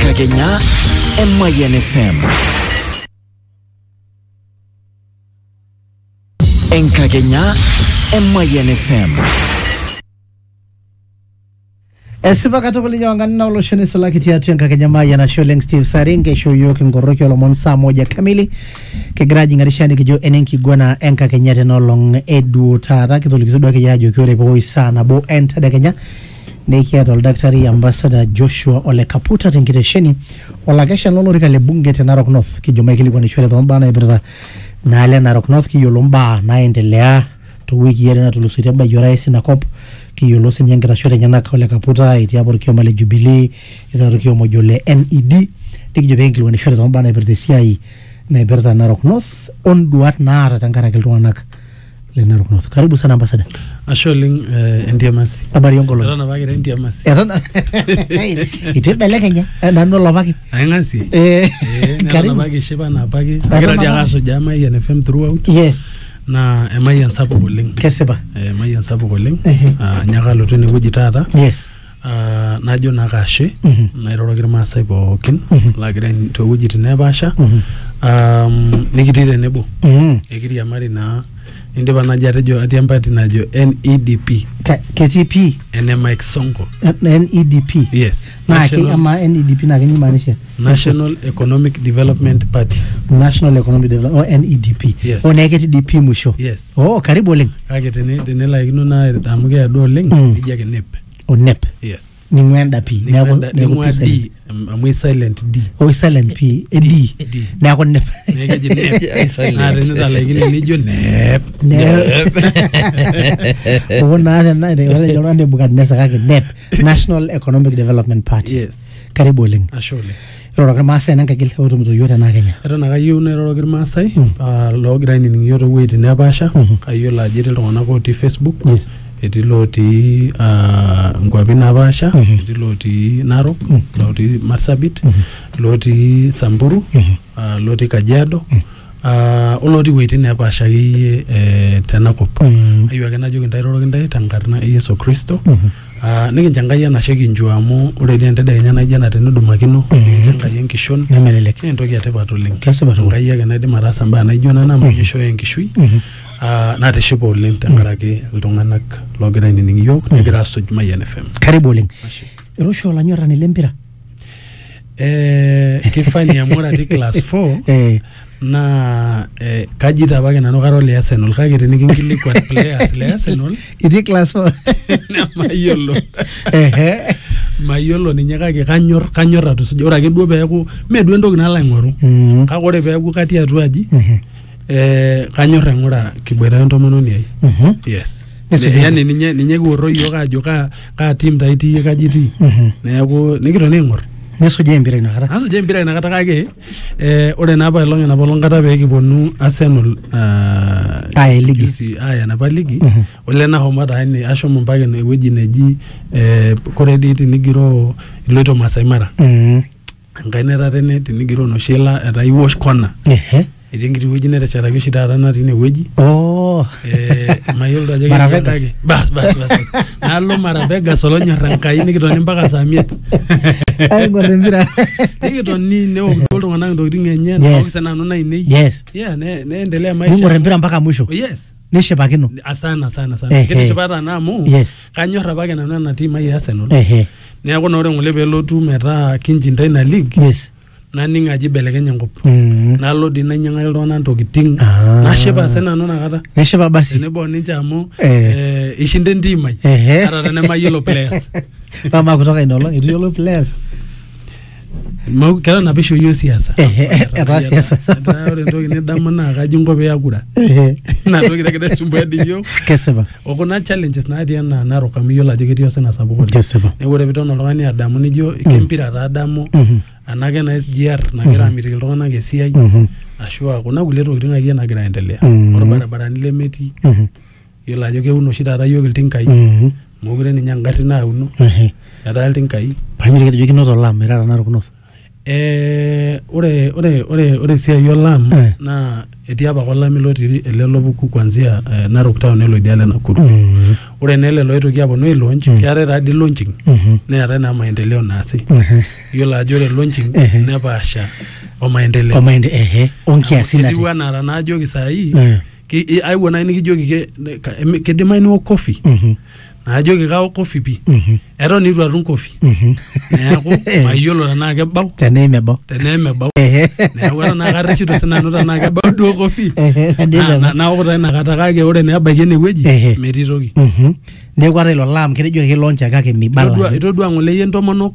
Kagenya Emayan FM. Enkakenya Emayan FM. esipa katukul ninye wangani na olosho nisulaki tiatua enkakenya mayian ashe oleng steve saringe isho yiok inkoroki olomon saa moja kamili kigira ajing'arisha nikijo enenkiguana enkakenya tena olong eduo taata kitolikito duake yie ajoki ore peoi saa nabo entedekenya Nekiata oldakitari ambasada Joshua Ole Kaputa tenkitesheni olakesha lolorika le bunge te Narok North. Kijo maikilikuanishore too mbaa naipirta inaalo e Narok North kiyiolo mbaa naaendelea too wikii are natulusoitie ebayie orais ina kop. Kiyiolo sii ninye nkitashoot enyenak Ole Kaputa etii apa olkioma le Jubilee etii taata olkioma ojo ole NED. Nikijo pee kinkilikuanishore too mbaa naipirta esiai naipirta Narok North o nduaat naata tenkaraki iltung'anak. le Narok North. Karibu sana ambasada. Ashe oleng eh, entiamasi. Habari onkolong. Eton apa kira entiamasi. Eton itu ibelekenya eh, nanu olopaki. Aing'asie. Eh, Eh, neton karibu. apa kishipa na apake. Eton Agira dii apa. ake asujaa Mayian FM throughout Yes, naa emayian sapuk oleng. kesipa. Eh, Emayian sapuk oleng. Ehe. Ah, Nyaaka alotu enewueji taata. Yes. Ah, najo naa kashe nairoroki irmaasai pookin laagira ain- toowuejitin neepaasha um, nikitii tenebo Mm. ekiriamari naa indipa naji atejo atii empati najo NEDP Ka- ketii pii ene Mike Sonko NEDP yes naa ke- National- amaa NEDP naa kenyimaanisha National Economic Development Party. National Economic Development o NEDP. Yes. O neeku ketii DP musho. Yes. Oh, karibu oleng. Kake tene tenelaikino naa amu keya duo oleng mm. nijia ake nep. O nep. Yes. Ning'ua enda P. Neeku neeku P silent. Amu silent D. O silent P. E D. D. Neeku nep. Neeku eji nep. Naa tenitalaikine nijo nep. Nep. Oo naa tena ore iltung'anak Nebukadnesa kake nep. national economic development party yes karibu oleng ashe oleng iroroki irmaasai nenkaigil otumito yiok tenaa kenya eton ake ayieu nairoroki irmaasai ah, loogira ainining iyiok toowueitin nepaasha kayiolo ajo etii iltung'anak otii facebook Yes. etii lootii ah, nkuapi napaasha etii lootii narok lootii marsabit lootii samburu ah, lotii kajiado ah, olotii wueitin nepaasha akeyie eh, tenakop Mm. ayieu ake najoki ntae iroroki ntae tenkarna e yesu kristo Mhm. Ah, nikincho enkai enashe kinjua amu ore dii entedekenya naijo ena tenidumakino Mhm. nikincho enkai enkishon nemelelek naa entoki etipat oleng Kesipa tukul. enkai ake naidim ataasa mbaa naijo nena amu ninye ishooyo enkishui Mhm. Ah, natishipa oleng tenkaraki iltung'anak loogira ainining iyiok negira asuj mayian fm karibu oleng Ashe. eroshi olanyorrani lempira Eh, kifani amu ore atii class 4 eh, naa eh, kaji taa apake nanu kara ole Arsenal kake tinikinkilikuan players le Arsenal itii class four nemayiolo Ehe. mayiolo ninye kake kanyor kanyor atusuja ore ake duo peeku mee duo entoki nalo aing'oru Mm, kake ore peeku katii atua aji mhm, eh, kanyor aing'ura kiboita entomononi ai mhm. yes Nisujaki. yani ninye ninye kiworro iyiook aajo kaa kaa tim taa itii kaji itii Mhm. neeku nikitoni aing'or nisujaa empira inakata asuja empira inakata kake eh, ore naa apailong enapa olong kata pee kiponu Arsenal ah, Aya ligi. juzi aya enapa ligi Mhm. ole nahomo taa ine ashomo mpaka ine wueji neji eh, kore dii tinigiroo iloito Masai Mara Mhm. enkae netatene tinigiroo noshi ila etaa iwosh kona Ehe. etii enkiti wueji neteshetaki oshi taata natii ine wueji Oh. Eh, mayiolo ajo Mara ketii Vegas. endake. bas bas bas bas. nalo mara vegas olonyorra enkai nikitoni mpaka saa miet Aing'or empira. nikitoni neok duo iltung'anak intokiting enye Yes. naok sinanu nainei Yes. yeah, ne- neendelea maisha Ning'or empira mpaka mwisho. Oh, yes nishipakino asana sana sana Ehe. kitishipa taana amu Yes. kanyor apake nanu ena tiim ai e Arsenal ehe neeku naa ore ng'ole pelotu metaa kinjinda ina league yes naning ajo ibelekenye enkop Mm. nalo dii nainyang'aki iltung'anak ntokiting Ah. nashipa se nanu inakata neshipa basi tenebo o ninche amu Eh. eh, ishinda entiim ai Ehe. ata tenemayiolo players amaa kutoka ina olong etu yiolo players Mau- ketaa ina pisho iyie siasa Ehe, etaa siasa. Etaa ore entoki nidamu naa kaji inko pee iakura Ehe, ina toki nagira aisumbua dii iyiook kesipa okuna challenges natii enaa narok amu iyiolo ajo ketii osina sapuk oleng kesipa neeku ore piton oltung'ani adamu nijo kempira taa adamu Mhm, anake ena SGR nagira amitiki iltung'anak esiai mhm, ashua kuna kulie tokitin akeyie nagira aendelea Mhm. orbaribarani lemetii mhm. Yiolo ajo keun oshi taata iyiook iltinkai. Mm. Mookure ninye engarri nauno. Ehe. Etaa iltinkai. Painyo teketejo kinoto olaam metaa tanakata orkunot. Eh, ore, ore, ore, ore esiai olaam Eh. naa etii apake olameyu lotii ele lopuku kuanzia eh, Narok town nelo idialo e Nakuru. Mm. Ore naa ele loitoki aponu ai launch, Mm. keetae taa dii launching Mhm. neetae naa maendeleo naasi. Ehe. Yiolo ajo ore launching Ehe. nepaasha o maendeleo. Omaende ehe. Onkiasin Amu ati. Etiu enaa tanaajoki saai Eh. Ki- i- aewuo naaji nikijoki ke- ne- ka- em- kidimayu niwok kofi Mhm. naajoki kaok kofi pii Mhm. eton eitu atum kofi Mhm. neeku mayiolo tenaa kebau tenaa emebau tenaa emebau Ehe. neeku eton naa karreshito sinanu tenaa kebau duo kofi Ehe, Na- na- nadede. naok taa inakata kake ore naa ebaiki enewueji Ehe. metii toki Mhm. neeku ata ilo laam ketejoki ake launch ake kake mibala Itodua- itodua ng'ole iyie ntomonok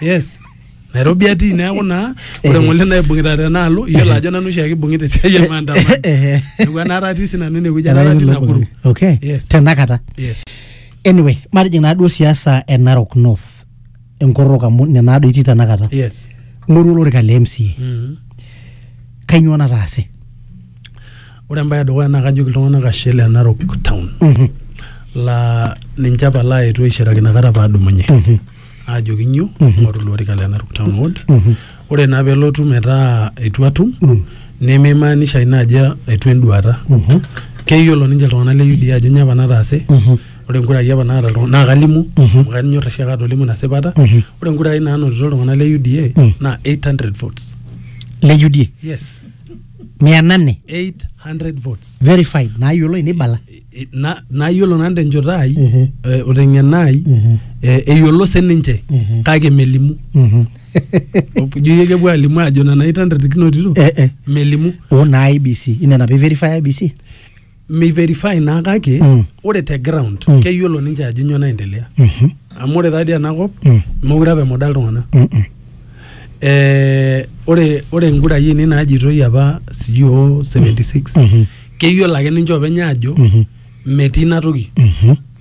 yes nairobi atii neeku naa ore ng'ole naibung'ita tenaalo iyiolo ajo nanu oshiake ibung'ita esiai e maandamano Ehe. neeku enaata atii sinanu inewueji enaata atii nakuru okay Yes. tenakata yes anyway matijing naaduo siasa e narok north enkorrok amu nena naado itii tenakata yes ng'oru olorika le mca Mhm. kainyoo nataase Ore embae edukuya naa kajoki iltung'anak ashe le Narok town mhm. laa ninche apa laaetuo aishiraki inakata paadumunye mhm. aajoki nyoo mhm. ing'oru ilo orika le Narok town ward ore naa pelotu metaa eitu atum nemeimaanisha ina ajo eitu enduata keyiolo ninche iltung'anak le UDA ajo nyoo apa nataase ore inkurai apa naata iltung'anak naa kalimu amu kanyor oshi ake atolimu ina sipata ore inkurai naanotito iltung'anak le UDA naa 800 votes le UDA yes mia nane 800 votes verified naayioloi neibala I- na- nayiolo nanu tenchoto ai Mhm. eh, o teng'ena ai Mhm. eh, eyiolo sininche Mhm. kake melimu Mhm. ijo yie kepuo alimu ajo nena 800 kinotito Eh, eh. melimu o naa IBC ina napa iverify IBC meiverify naa kake Mm. ore te ground Mm. keyiolo ninche ajo nyoo naendelea Mhm. amu ore taadii enakop Mm. meure apa emuda iltung'anak Mm, mm. eh, ore ore inkurai ainei naajitoi apa sijui o 76 Mhm. keyiolo ake ninche openy aajo Mhm. metii ina toki Mhm.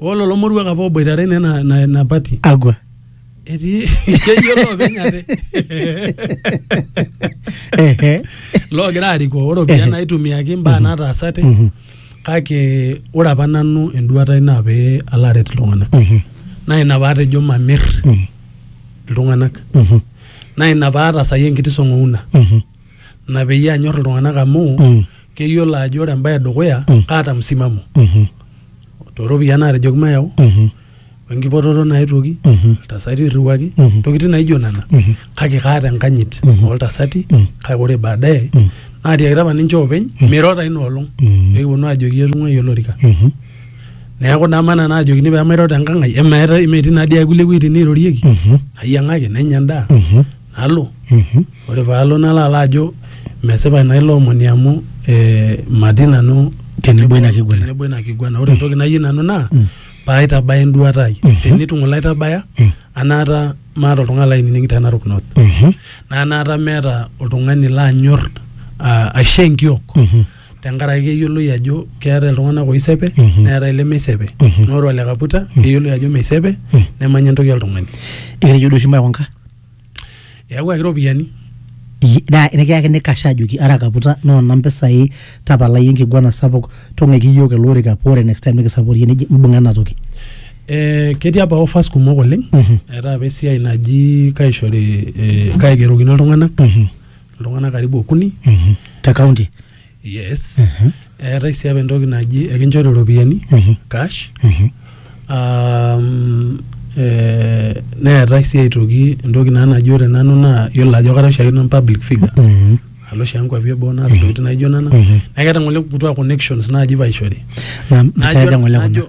oo lelo moruak apa oboitare naa ina- ina ina pati agwa etii ketii olopeny ate Ehe. loogira arikoo ore opiyiani naitumiaki imbaa naataasate Mhm. kake ore apa nanu enduata ai naa pee alo aret iltung'anak Mhm. naa ina paatejo mamir Mhm. iltung'anak Mhm. naa ina paatasayie enkiti song'ouna Mhm. Ina peyie anyor iltung'anak amu mm. keyiolo ajo ore embae edukuya mm. kaata msimamo mm-hmm. tooropiyiani naatejoki mayau mm-hmm. wenkipototo naetuoki mm-hmm. iltasati irriwaki ntokitin naijo nena kake kaata enkanyit oltasati mm. kake ore baadaye mm. naatiakita apa ninche oopeny mm. miro taa ina olong peekiponu aajoki etung'uayie olorika neeku dama nanu ajokini pee mairo tenkang ai emetii naa dii ae kulie wuejitin neirorieki nayiang'aki nenya endaa nalo Mhm. ore paalo nalo alo ajo mesipa ina ilo omoni amu eh, matii nanu Tenebo ina kiguana. tenebo ina kiguana ore entoki nayieu nanu naa Mm. paaitabaya enduata ai Mhm. tenitu ng'ole aitabaya Mm. anaata maata oltung'ani lainining te Narok North Mhm. naa anaata meeta oltung'ani lanyor ah, aisho enkiok Mhm. tenkaraki keyioloi ajo keetae iltung'anak oisepe Mhm. neetae ilemeisepe Mhm. naa ore ole kaputa keyioloi ajo meisepe Mhm. nemanya entoki oltung'ani eketejo duo oshi maikunka eyawuaki iropiyiani naa nikiyakini kasha ajoki ara kaputa noona mpisai tapalai enkiguana sapuk tung'ueki iyiook ele orika paa ore next time nikisaporie neji mbung'a ena toki Eh, ketii apa offers kumok oleng Mhm. eetae apa esiai naji kaishori eh, kaigerokino iltung'anak Mhm. iltung'anak karibu okuni Mhm. te kaunti yes Mhm. eetae sii apa entoki naji ekinchori iropiyiani Mhm. cash Mhm. um, eh, neetae sii aitoki entoki naa naji ore nanu naa yiolo ajo kara oshiake nanu public figure Mhm. alo oshi enkuapi eboo naas intokitin naijo nena Mhm. naa keeta ng'ole kutua connections naaji paishori na mpisai aja ng'ole kuna najo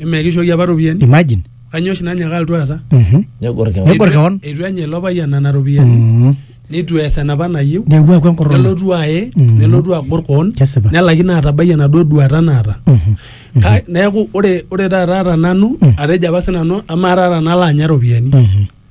Eme kishooki apa iropiyiani. imagine Kanyoo oshi nanyaaka alotu aasa? Mhm. Negor kewan. Negor kewan. Eitu enya ilo payian nena ropiyiani. Mhm. Neitu ees enapa nayieu. neewuo aku enkorroni Nelotu aye, Mhm. nelotu agor koon. Kesipa. Nelaikino atabai enaduo duata naata. Mhm. Ka- Neeku ore ore taata te nanu atejo apa sinanu amaa taata nalo anya iropiyiani. Mhm.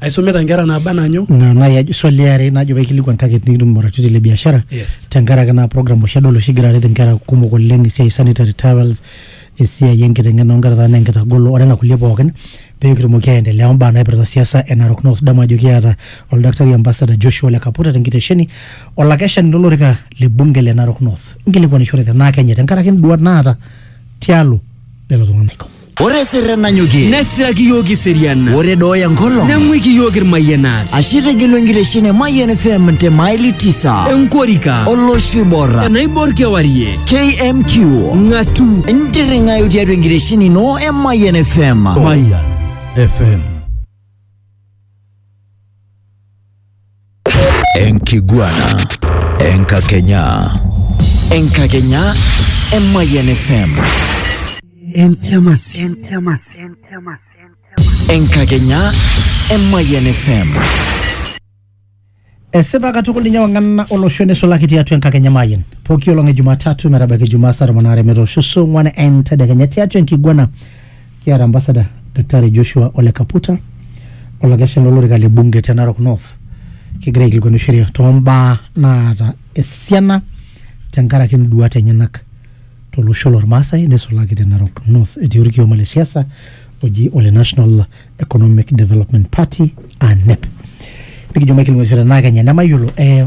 aisumita nkera naaba anaa nyoo na nai ajo swali eare najo paikilikuan target nikitum oratioti le biashara yes tenkaraki naa program oshi adol oshi egira aret inkera kumok oleng esiai e sanitary towels esiai enkiteng'ena onkera taata naa enkitagolo onena kulie pookin pekitumoki aendelea ombaa naipirta siasa e Narok North idamu ajo kiata oldakitari ambassador Joshua ole Kaputa tenkitesheni olakeshani lolorika le bunge le Narok North inkilikuanishore tenaa kenye tenkaraki induat naata tialo lelo tung'anak. Ore sirre nanyokie. Nesiraki iyiook iserian. Ore dooya enkolong. Neng'uiki iyiook irmayianat. Ashe itegelu enkiteshin e Mayian FM te maili tisa. Enkorika. Olosho oibor. Enaibor kewarie. KMQ. Ng'atu. Intirring'ayu tiatua enkiteshin ino e Mayian FM. Mayian FM. Enkiguana. Enkakenya. Enkakenya Emayian FM. Entiamasi. Entiamasi. Entiamasi. Enkakenya Emayian FM. esipa katukul ninye wang'ana olosho neisulaki tiatua enkakenya mayian pooki olong e jumatatu metabaiki jumaa saa tomon aare metoosho saa ong'uan entedekenya tiatua enkiguana Kiata ambasada Daktari Joshua Ole Kaputa olakeshani lolorika le bunge te Narok North kigira aikilikuanu sheria tombaa naata esiana tenkaraki induat enyenak tolosho lormaasai nisulaki te Narok North etii orkioma le siasa oji ole National Economic Development Party ANEP nikijo maikilikuanu sheria tenaa kenya nemayiolo eh,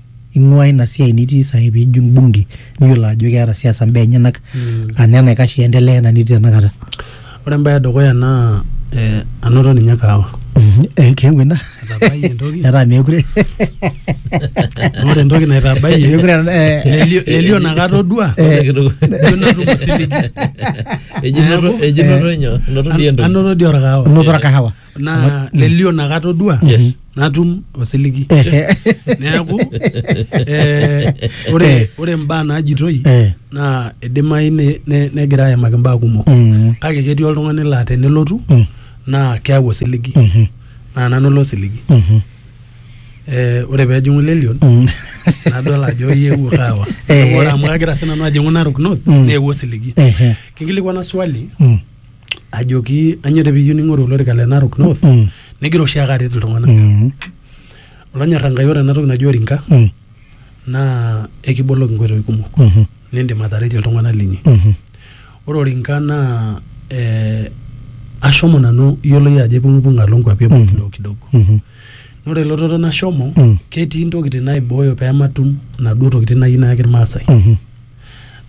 ing'ua ina siai nitii sahi piijing bunge niyiolo ajo keeta siasa mbaa enyenak mm. ana enaikash iendelea ena nitii tenakata ore embaye edukuya naa eh, anoto ninye kaawa mm-hmm. eh, keewuo ina metaa meekure ore entoki naitabayie eh, elio nakata odua anoto dii orkahawa naa lelio nakata odua Yes. natum osiligi Eh, neeku eh, ore ore mbaa naajitoi eh, naa idimayu ne- ne- negira ayamaki mbaa kumok mm, kake ketii oltung'ani laa tenelotu mm, naa keau osiligi mhm, naa nanu ilo osiligi mhm, Eh, ore peejing'u lelion mm. nadol ajo iewuo kaawa Eh. ore amu kagira sinanu ajing'u narok north Mm. neewuo osiligi Ehe, kinkilikwana swali mm, ajoki anyo te piyieu ning'oru olorika le Narok North mm. negira oshi ake aret iltung'anak mm. olonyorra Enkai ore enatoki naji orinka mm. naa ekiboloki inkoitoi kumok mm -hmm. nindim ataretie iltung'anak linyi mm -hmm. ore orinka naa eh, ashomo nanu yioloi ajo aipung'ipung alo nkuapi eboo mm -hmm. kidogo kidogo mm -hmm. ore elototo nashomo mm. ketii ntokitin naibooyo pematum naduo tokitin nayieu nayaki irmaasai mm -hmm.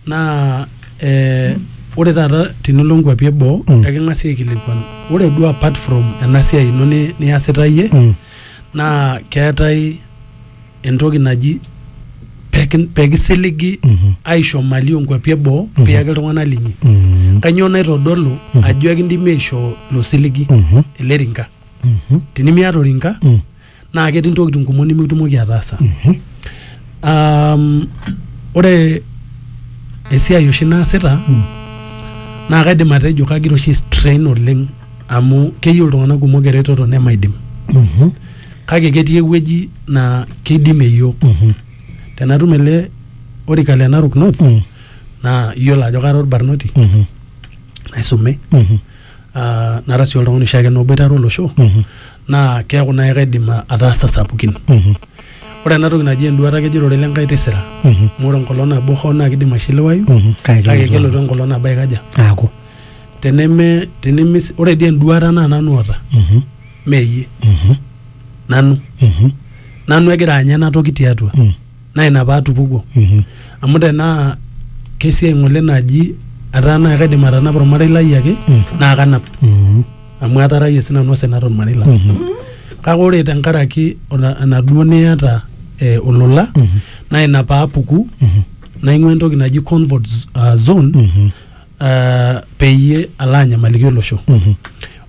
naa eh, ore taata tinilo nkuapi eboo Mm. eking'asi aikilikuan ore duo apart from ena siai ino ni- niasita iyie Mm. naa keetae entoki naji peki- pekisiligi Mhm. aisho mali onkuapi eboo Mhm. piyaki iltung'anak linyi Mm. kanyoo naitodolu Mhm. ajo ekindimi aishoo ilo siligi Mhm. ele rinka Mhm. tinimiata orinka Mm. naa ketii ntokitin kumok nimitumoki ataasa um, ore esiai oshi naasita naa kaidim atejo kagira oshi strain oleng amu keyieu iltung'anak kumok eretoto nemaidim kake ketii ewueji naa keidimie iyiok tenatum ele orika le Narok North Mm. naa iyiolo ajo kara orbarnoti Mhm. naisume Mhm. ah, nara sii oltung'ani oshiake naa oboitare olosho Mhm. naa keeku naai kaidim a- ataasa sapukin Mhm. ore ena toki naji enduata kejo ororei lenkai tisira Mhm. amu ore enkolong nabo hoo naa kidim aishiliwayu Mhm. Kake kake kelotu kelotu enkolong nabo aikaja aaku teneme teneme ore dii enduata naa nanu oota Mhm. meyie Mhm. nanu Mhm. nanu egira anya ena toki tiatua Mm. naa ina paatupukuo Mhm. amu tenaa kesiai ng'ole naji etaa naa kaidim atanapa ormarei lai ake Mm. naa kanap Mhm. amu atarayie sinanu osina tormarei lang Mhm. kake ore tenkaraki ola- enaduo niata eh, olola Mhm. naa ina paapuku Mhm. naing'ua entoki naji comfort z- ah, zone Mhm. eh, peyie alo anyamaliki olosho Mhm.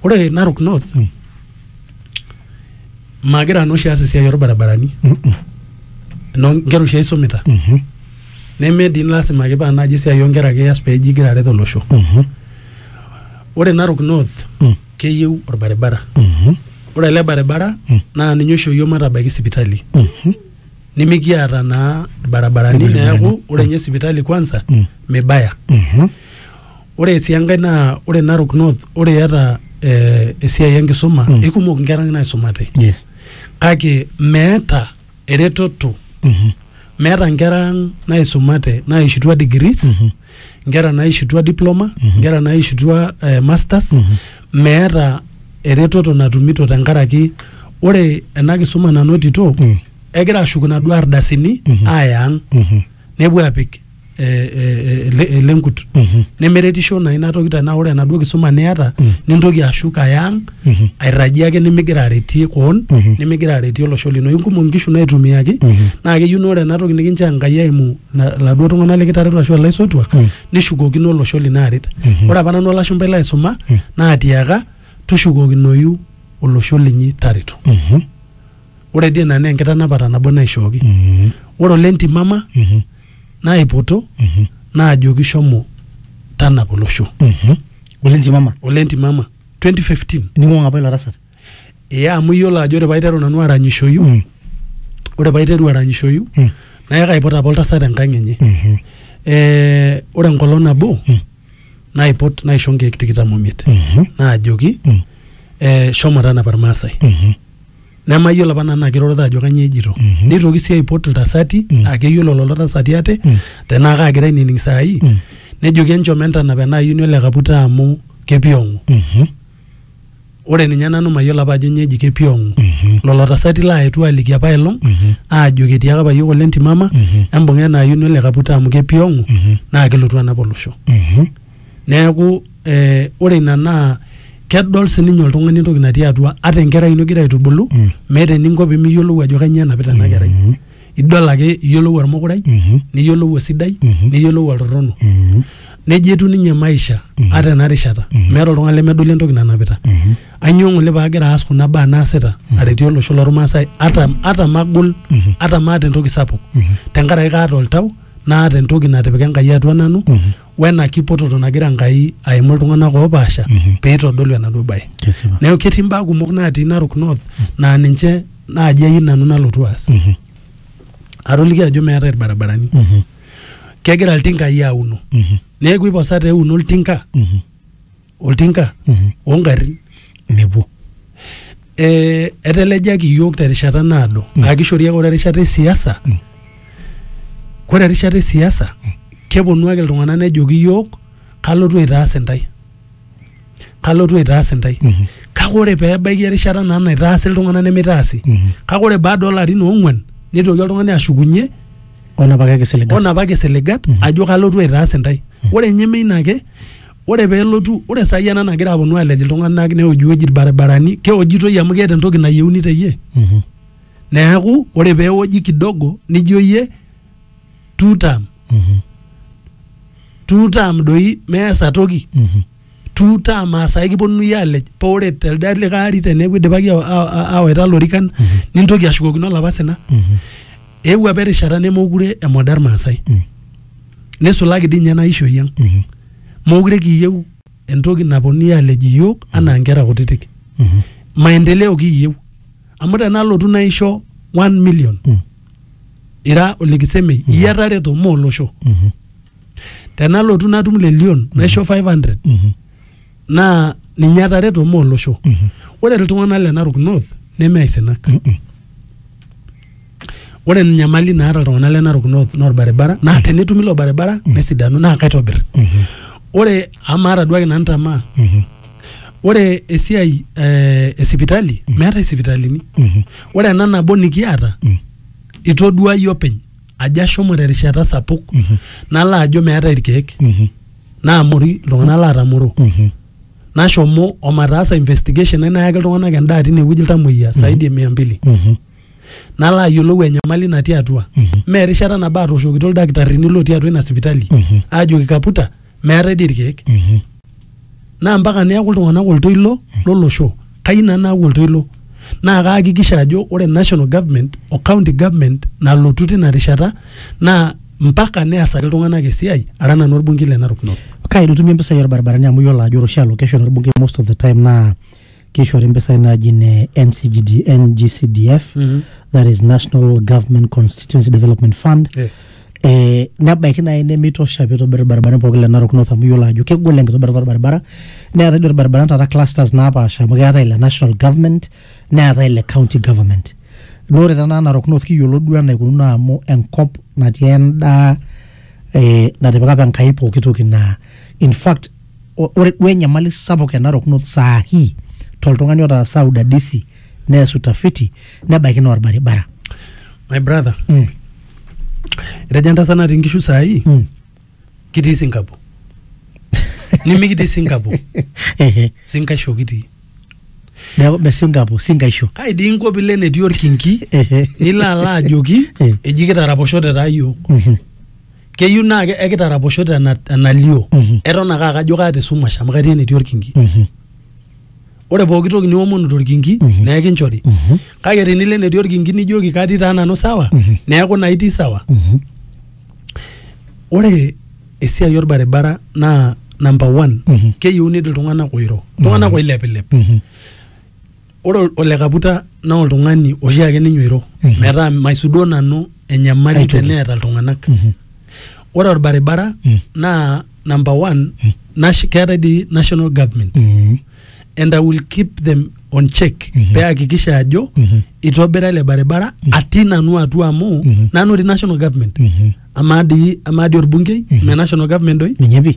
ore narok north Mm. magira nanu oshi aas esiai orbarabarani Mhm. no nkera oshi aisumita Mhm. neme dii lasima ake paa naaji esiai onkera ake ias peji igira aret olosho Mhm. ore narok north Mm. keyieu orbaribara Mhm. ore ele baribara Mm. naa ninye oisho yiok matabaiki sipitali Mhm. nimikiata naa ilbarabarani Ilbarabarani. neeku ore ninye sipitali kwanza Mm. mibaya Mhm. ore sii enkae naa ore Narok North ore iata eh, esiai enkisuma Mm. ikumok inkera naisumate Yes. kake meeta eretoto Mhm. meeta nkera ang naisumate naishutua degrees Mhm. nkera naishutua diploma Mhm. nkera naishutua eh, masters Mhm. meeta eretoto natumito tenkaraki ore ena kisuma nanotito Mm. egira ashuku naduo ardasini Mhm. aaya ang Mhm. nepuo apik eh, eh, eh, ele- elenkut Mhm. nemeretisho naa ina toki tenaa ore enaduo kisuma niata Mm. nintoki ashuk aya ang Mhm. airrajie ake nimigira aretie koon Mhm. nimigira aretie olosho lino inkumok nkishu naitumiaki Mhm. naa keyieu naa ore ena toki nikinchoo enkai eimu la- laduo tung'anak likitareto ashu ilaisotuak Mm. nishukokino olosho lino aret Mhm. ore apa nanu olashumpai laisuma Mm. naatiaka tushukokinoyu olosho linyi tareto Mhm. Ore dii ina naa enkitanapata nabo naishooki. Ore ole ntimama naipoto naajoki shomo tanapa olosho. Ole ntimama. Ole ntimama 2015. Ning'uaa apa ilo tasat. Ee amu iyiolo ajo ore paiteru nanu aranyishoyu mm. ore paiteru aranyishoyu mm. naa kaipot apa oltasat enkang enye mm-hmm. ee ore enkolong nabo mm. naipot naisho nkeek tikitam omiet mm-hmm. naajoki mm. ee shomo tanapa irmaasai mm-hmm. nemayiolo apa nanu naa kirorita ajo kanyioo ejito Mhm. neitoki sii aipot iltasati Mm. aa keyiolo lelo tasati ate Mm. tenaa kaagira ainining saai Mm. nejoki enchom entanap ena ayioni ole kaputa amu kepiong'u Mhm. ore ninye nanu mayiolo apa ajo nyoo eji kepiong'u Mhm. lolo tasati laaetuo aliki apa elong Mhm. aajoki etiaka apa yiok ole ntimama Mhm. embung'a ena ayioni ole kaputa amu kepiong'u Mhm. naa kelotu anap olosho Mhm. Neaku eh, ore ina naa kedol sininye oltung'ani entoki natii atua ata enkerai ino igira aitubulu Mm. meeta eninko pemiyiolou ajo kanyoo enapita ena kerai Mhm. idol ake iyiolou ormukurai Mhm. niyiolou osidai Mhm. niyiolou oltorrono Mhm. neji etiu ninye maisha Mhm. ata ena rishata Mhm. meeta oltung'ani lemedoli entoki nanapita Mhm. ainyoo ng'ole paagira aas kuna baa naasita aretie olosho lormaasai ata, ata magol Mhm. ata maata entoki sapuk Mhm. tenkaraki kaata oltau naata entoki natipika enkai atua nanu Mhm. wena kipototo nagira Enkai aimu iltung'anak oopaasha pee eitodolu enaduo bae. Kesipa. Neeku ketii imbaa kumok naatii Narok North naa ninche naaji ayieu nanu nalotu aas. Mhm. Atoliki ajo meetae ilbarabarani. Mhm. Kegira iltinkai auno. Mhm. Neeku eiposa tee euno oltinka Mhm. oltinka ongarrin mepuo eh, etelejaki iyiok terishata naado aa kishori ake ore erishata esiasa kore erishata esiasa keponu ake iltung'anak nejoki iyiok kalotu aitaas intae kalotu aitaas intae kake ore peebaiki erishata naa naitaasi iltung'anak nemeitaasi kake ore baada olarin oong'uan nitoki oltung'ani ashukunye onapaka kisiligat onapaki siligat ajo kalotu aitaas intae ore ninye meina ake ore pelotu ore sai ena nagira aponu alej iltung'anak neojiwoji irbaribarani keojitoi amu keeta entoki nayieuni teyie Mhm. neeku ore peoji kidogo nijo yie two term Mhm. two term doi meesa toki Mhm. two term asai kiponunui alej pa ore telde likae ari teneeku idipaki awa- awa- awa- awaita lorikan nintoki ashukokino olapa sina Mhm. eewuo apa erishata nemokure emodern maasai Mhm. nisulaki dii ninye ena ishoi ang Mhm. Mookure kiyieu entoki naponunui alej iyiook anaa nkera kutitik. Maendeleo kiyieu. Amu tenalotu naisho one million ira ole Kisemei iyie atareto mme olosho. Tenalotu natum lelion naisho 500 naa ninye atareto mme olosho. Ore iltung'anak le Narok North neme aisinak. Ore enyamali naata iltung'anak le Narok North naa orbaribara naa tenetumi ilo baribara mm. nesidanu naa kaitobir. Mm-hmm. Ore amu maata duake nanu tamaa. Mm-hmm. Ore esiai eh, e sipitali mm. meetae sipitalini. Mm-hmm. Ore ena nabo nikiata mm. itodua iyie openy ajo ashomo terishata sapuk nalo ajo meetae irkeek naamori iltung'anak laatamoro. Nashomo omataasa investigation nayaki iltung'anak endaa tinewueji iltamoyia saidi e mia mbili. nalo ayiolou enyamali natii atua mee erishata nabo atooshokito ildakitarini lotii atua ina sipitali aajoki kaputa meetae dii irkeek naa mpaka neeku iltung'anak oltoilo lolosho kayieu nanu naaku oltoilo naa kaakikisha ajo ore national government o county government nalotu tina rishata naa mpaka neasaki iltung'anak esiai ara nanu orbungei le Narok North. Kaji itumie impisai orbaribarani amu iyiolo ajo ore oshi allocation orbungei most of the time naa Keishori mpisai naaji ne NCGD, NGCDF, mm -hmm. that is National Government Constituency Development Fund. Yes. Eh, nebaiki naaji nemeitosha pee eitobir irbaribarani pooki le Narok North amu iyiolo ajo kegol enkitobirata orbaribara neetae doi irbaribarani taata clusters naapaasha amu keetae ile national government neetae ile county government naa ore tenaa Narok North kiyiolo duo enaikununo amu enkop natii endaa eh, natipika apa Enkai pooki toki naa in fact o- ore duo enyamali sapuk e Narok North saa hii toltung'ani otaasa udadisi nees utafiti nebaiki naa orbaribara. my brother Mm. etejo entasat natii nkishu saai Mm. kitii sinkapo nimikitii sinkapo Ehe. sinkaisho kitii Neeku me Singapore, Singaisho. kai dii inko pilo enetii orkinki Ehe. nilo alo ajoki Eh. eji kitaraposhote taa yiok Mhm. keyieu naa ke- ekitaraposho tena- enalio Mhm. eton ake akajo kaata esumash amu katii enetii orkinki Mhm. ore pooki toki niomonu torkinki Mhm. naa ekinchori Mhm. kake tenilo enetii orkinki nijoki katii taa nanu sawa Mhm. neeku naa itii sawa Mhm. ore esiai orbaribara naa number one Mhm. keyieuni iltung'anak oiro iltung'anak oilepilep Mhm. ore ol- ole kaputa naa oltung'ani oshiake ninye oiro Mhm. metaa maisudoo nanu enyamali Aitoki. teneeta iltung'anak Mhm. ore orbaribara Mm. naa number one nash- keetae dii national government Mhm. and i will keep them on check Mhm. pee ahakikisha ajo Mhm. itobira ele baribara atii nanu atua amu Mhm. nanu ri national government Mhm. amaa dii amaa dii orbungei Mhm. me national government doi ninye pi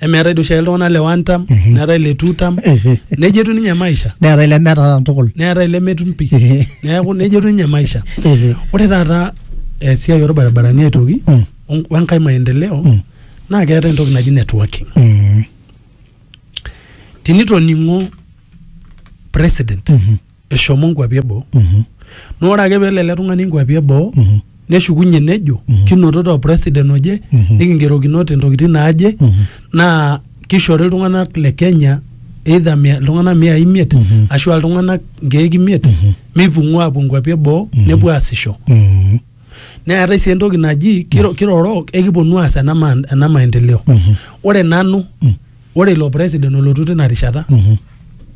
emeetae doi oshiake iltung'anak le one term neetae le two term neija etiu ninye maisha neetae lemeeta tukul neetae lemetum pi neeku neija etiu ninye maisha ore taata esiai orbaribarani aitoki Mm. on- wenkae maendeleo Mm. naa keetae entoki naji networking Mm. tinitoning'o president Mhm. eshomo nkuapi eboo Mhm. na ore ake pelo ele tung'ani nkuapi eboo Mhm. neshukunye nejo Mhm. kinotito president oje Mhm. nikingerokinote ntokitin naaje Mhm. naa kishori iltung'anak le Kenya either mia- iltung'anak mia imiet Mhm. ashu iltung'anak nkeek imiet Mhm. mipung'ua apuo nkuapi eboo Mhm. nepuo aasisho Mhm. neetae sii entoki naji kiro- kiroro ekiponu aas ena ma- ena maendeleo Mhm. ore nanu Mm. ore ilo president olotu tina rishata Mhm.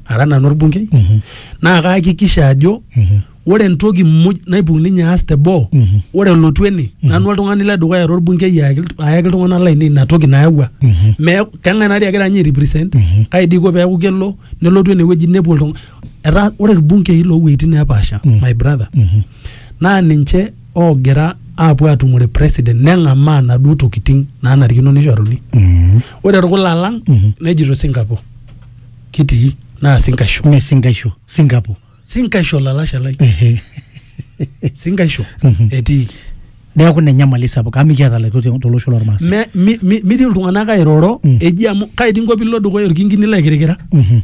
ara nanu orbungei Mhm. naa kaakikisha ajo Mhm. ore entoki muj naibung ninye aas te boo Mhm. ore elotu ene nanu oltung'ani le dukuya ara orbungei ayaki ilt- ayaki iltung'anak lainei ina toki nayawua Mhm. Me- keng'ae nari agira ninye airepresent Mhm. kai dii iko peeku kelo nelotu enewueji nepuo iltung'anak etaa ore irbungei loowueitin neepaasha Mhm. my brother Mhm. Naa ninche oogira aapuo aatumore president neng'amaa naduo tokitin naanarikino neishoruni. Ore orkula lang nejito Singapore kitii naa sinkaisho. Mee sinkaisho, Singapore. Sinkaisho olalashe lai. Ehe. Sinkaisho etiiki. neeku ina enyamali sapuk amu mikiata ilaitotiok tolosho lormaasai Me- mi- mi- mitii iltung'anak airoro Mm. eji amu kai dii inko piilo dukuya orkingini laikirikira Mhm.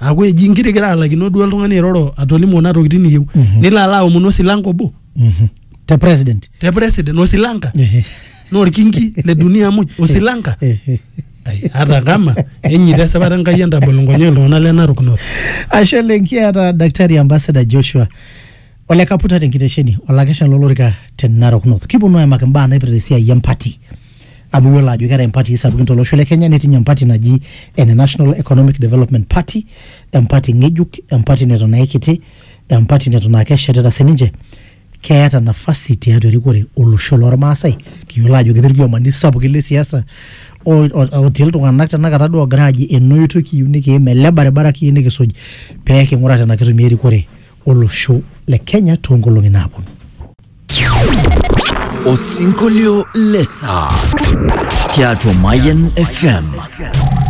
aaku eji inkirikira alakino duo oltung'ani airoro atolimu kuna tokitin niyieu Mhm. nilo alo aomonu osilanka obo Mhm. te president te president osilanka Ehe. na orkingi le dunia muj osilanka Ehe. Ai, hata kama enyita esipata enkai entabol nkonyek iltung'anak le narok north ashe lenkiata daktari ambassador joshua Ole Kaputa tenkitesheni olakesha lolorika te Narok North. Kiponu aimaki mbaa naipirta esiai empati. Amu iyiolo ajo keetae impatii sapukin tolosho le Kenya netii ninye empati naji ene National Economic Development Party, empati ng'ejuk, empati neton aikiti, empati neton aa keshetita sininche. Keeta nafasi tiatua erikore olosho lormaasai. Kiyiolo ajo ketii irkiomani sapukin le siasa otii iltung'anak tenakata duo oogira aaji ena oitoi kiyieu nikiim, ele baribara kiyieu nikisuj pee king'ura tenaa kitumia erikore olosho le Kenya too nkolong'i naaponu. Osinkolio le saa tiatua Mayian FM.